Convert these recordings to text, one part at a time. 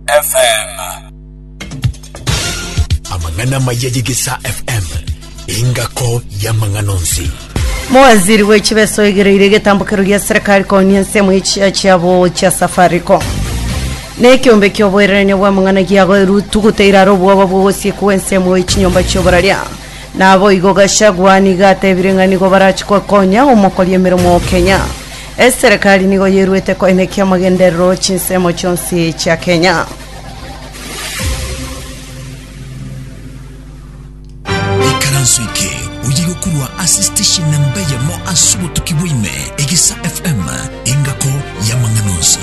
FM. Amang'ana amaya y'Egesaa FM, engako y'amang'ana onsi. Mowaziri w'echibeso oigereire egetambokero gia serikali konia ensemo y'echia chiabo chia Safaricom. Nekiombe kioboirania bw'amang'ana giagoirwe tuguteire aro obwoba bw'ogosiekwa gw'ensemo y'echinyomba chioboraria. Naboigo Gachagua nigo atebire ng'a nigo barache gokonya omokori emeremo Kenya. Eserekari nigo yeruete koenekia amagenderero 'chinsemo chionsi chia Kenya. Ikaranso eke oye gokorwa ase station namba eyemo ase obotuki bwa ime, Egesa FM, engako y'amang'ana onsi.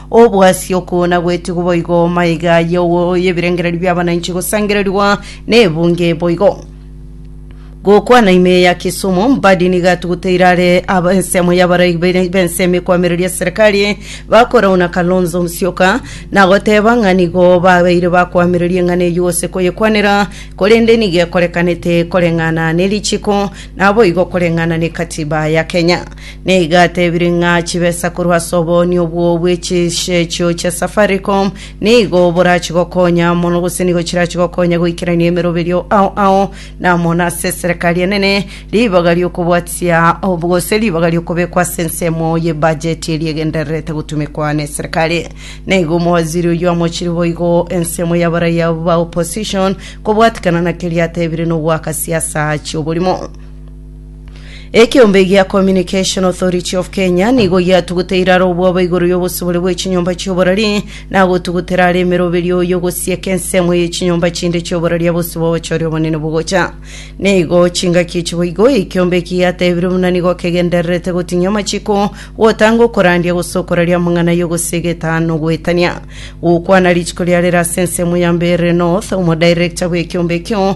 Obwasi okwo nagwetigwe boigo, maiga y'ogo y'ebirengererio bi'abananchi gosangererigwa n'ebunge boigo. Gokwana ime ya Kisumu, Mbadi niga atuguteire are aba ensemo y'abarai bene- b'ensemo ekwamereria eserekari bakorauna Kalonzo Musyoka, nagoteba ng'a nigo babeire bakwamereria eng'ana eyio gose koyekwanera, korende nigo ekorekanete koreng'ana nerichiko, naboigo koreng'ana nekatiba ya Kenya. Nigo atebire ng'a chibesa korwa ase obooni obwo bwe chisechio chia Safaricom nigo borachie gokonya mono gose nigo chirachie gokonya goikerania emeroberio ao ao na mono ase eserekari enene ribaga ri'okobwatia ob- gose ribaga ri'okobekwa ase ensemo ye bajeti eria egendererete gotumekwa n'eserekari. Nigo omowaziri oyio amochire boigo ensemo y'abaraiya ba opposition kobwatikana na keria atebire nogoaka siasa chi'oborimo. Ekeombe gia Communication Authority of Kenya nigo giatuguteire iraro obwabo igoro y'obosibore bwe chinyomba chi'oborari na gotugutera are emeroberio oyo gosieka ensemo ye chinyomba chinde chi'oborari abosibo ochore obonene bogocha. Nigo chingaki echibo igo ekeombe eki giatebire buna nigo kegendererete gotinyia amachiko, gotanga okorandia gose okoraria amang'ana y'ogosiega etano goetania. Gokwana rituko riarera ase ensemo ya Mbeere North, omodirector bw'ekeombe ekio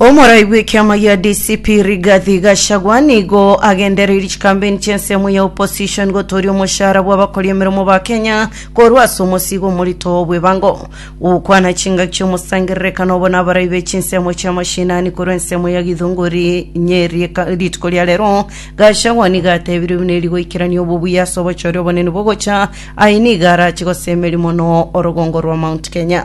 Omorai bw'ekiama gia DCP Rigathi Gachagua nigo agendereiri chikambeini chi'ensemo ya opposition gotooria omoshara bw'abakori emeremo ba Kenya korwa ase omosigo omorito bw'ebango. Gokwana chingaki chi'omosangererekano obo nabarai be chinsemo chia mashinani korwa ensemo ya Githunguri Nyeri rituko ria rero, Gachagua nigo atebirie buna eri goikerania obobuya ase obochore obonene bogocha, aye nigo arache gosemeria mono orogongo rwa Mount Kenya.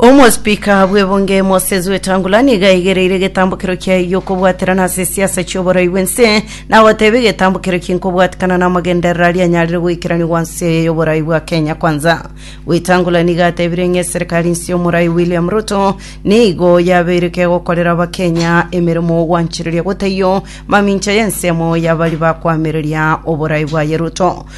Omospika bw'ebunge Moses Wetangula nigo aigereire egetambokero kiaye gi'okobwaterana ase esiasa chi'oborai bw'ense na goteba egetambokero eki nkobwatekana n'amagenderero aria anyarire goikerania gwansi eye y'oborai bwa Kenya Kwanza. Wetangula nigo atebire ng'a eserekari nse y'omorai William Ruto nigo yabeire kegokorera Abakenya emeremo ogwanchereria gotaiyo mamincha y'ensemo y'abari bakoamereria oborai bwaye Ruto.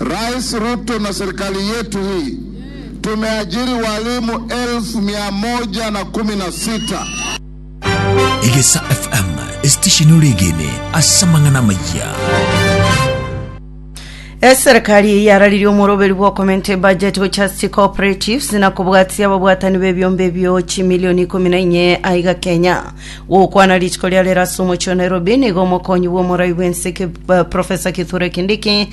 Rais Ruto na serikali yetu hii tumeajiri walimu elfu mia moja na kumi na sita. Egesa FM, esitesheni ore egene ase amang'ana amayia. Eserekari yararirie omoroberi bw'okomenta ebudget gochia ase cooperatives na kobwatia ababwatani b'ebiombe ebio chimilioni ikomi na inye aiga Kenya. Gokwana rituko ria rero ase omochie o Nairobi nigo omokonyi bw'omorai bw'ense ki- eh, Professor Kithure Kindiki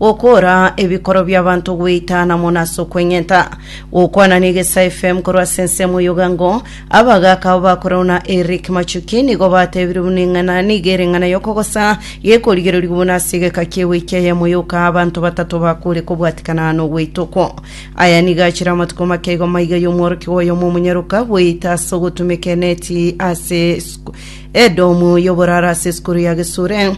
Gokoora ebikoro bi'abanto gweitaana mono ase okweng'enta. Gokwana na Egesae FM korwa ase ensemo y'ogango, abagaaka abo ba korau na Eric Machuki nigo batebirie buna eng'ana nigo ere eng'ana y'okogosa gekorigererigwa buna ase egeka ki'ewiki eyemo yoka abanto batato bakure kobwatikana aa nogweita okwo. Aya nigo achire amatuko make igo maiga y'omworokigwa oyomo omonyaroka gweita ase ogotumeka eneti ase edomu y'oboraro ase esukuru ya Gesure.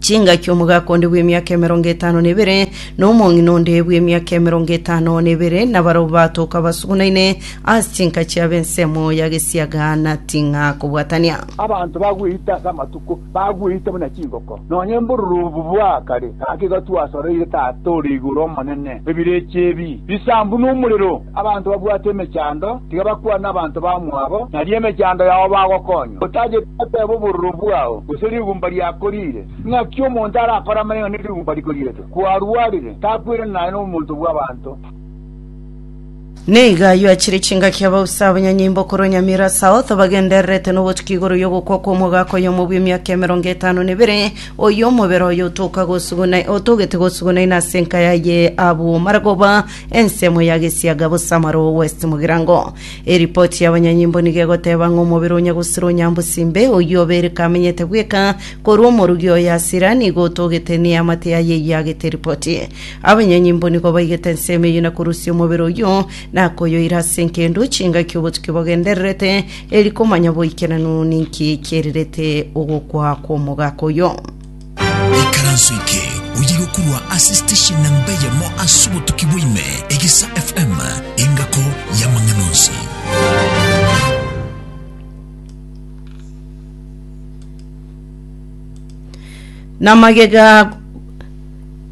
chingaki omogaka onde bw'emiaka emerongo etano na ebere, na omong'ina onde bw'emiaka emerongo etano na ebere, na barabwo batoka basugunaine ase chinka chiabo ensemo ya gesiaga na ting'a kobwatania. Abanto bagweite ase amatuko, bagweite buna chingoko, nonya embururubu bwa kare, gaki gotwasoreire Tata ore igoro Omonene, ebirecha ebi bisambu nomorero. Abanto babwate emechando tiga bakwane abanto bamwabo, nario emechando yao bagokonywa, otacheti goteba obororo bwao, gose rigumba riakoriire. Ng'aki omonto arakore amang'ana ne rigumba rikoriretwe? Kwarwarire, takwirana naye nomonto bw'abanto. Nigo ayio achire chingaki abausi abanyanyimbo korwa Nyamira South bagendererete nobotuki igoro y'ogokwa kw'omogaka oyomo bw'emiaka emerongo etano na ebere, oyio omobere oye otoka gosuguna otogete gosuguna inase enka yaye abwo maragoba Ensemo ya gesiaga bosamaro o West Mugirango. Eripoti y'abanyanyimbo nigo egoteba ng'a omobere o Nyagusiro o Nyambusimbe, oyio obereka amenyete bweka korwa omorugi oye Asira, nigo otogete neamate yaye eyio agete ripoti. Abanyanyimbo nigo baigete ensemo eyio na korusia omobere oyio na koyoira ase enkendu chingaki obotuki bogendererete, eri komanya boikeranu ninki kiairerete ogokwa kw'omogaka oyio. Ikaranso eke oyirwe korwa ase station namba eyemo ase obotuki bwa ime, Egesa FM, engako y'amang'ana onsi. na magega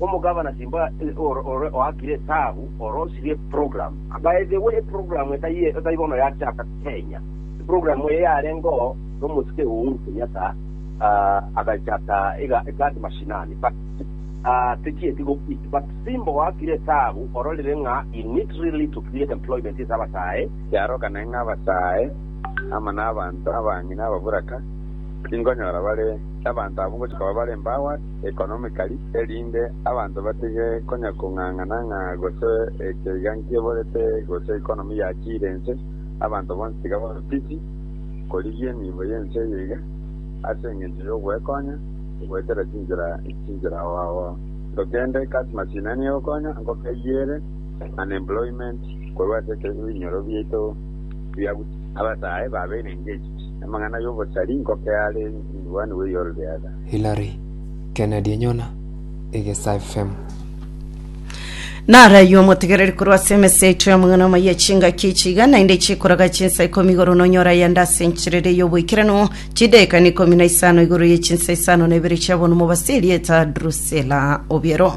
Omogavana timba ore oakire etaabu ore osirie eprogram. By the way, eprogram etari bono yachaka Kenya. Eprogram eye yarengeo nomosike Uhuru Kenyatta agachaka iga eGazi Mashinani but techieti gokwitia. But timba oakire etaabu ororire ng'a he need really to create employment ase abasae. Kiaroka naende ng'a abasae ama nabanto abang'ina ababuraka, tingonyora bare, abanto abwo ngochia koba bare empowered. economically, erinde abanto batige konya kong'ang'ana ng'a gose ekeiga nkiborete gose economy yachiire ense, abanto bonsi tiga babe busy korigia enibo y'ense eye iga, ase engencho y'ogwekonya goetera chinchera chinchera ao ao. Nto kende customers ina nigo egokonya ngokeyiere unemployment korwa ase ekero ebinyoro biaito biabusa. Abasae babeire engaged, amang'ana y'obosari ngokeare in one way or the other. Hillary Kennedy Nyona egesafemu. Narayi omotegereri korwa ase emesa yaito y'amang'ana amaya echingaki echi iga naende chikoraga chinsa ikomi igoro nonyore ayande ase encherera ey'oboikeranu chidaekano ikomi na isano igoro ye chinsa isano na ibere chi'abonomo base erieta Drusilla Obiero.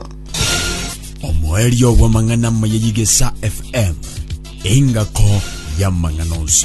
omoerio bw'amang'ana amaya y'egesa FM, engako y'amang'ana onsi.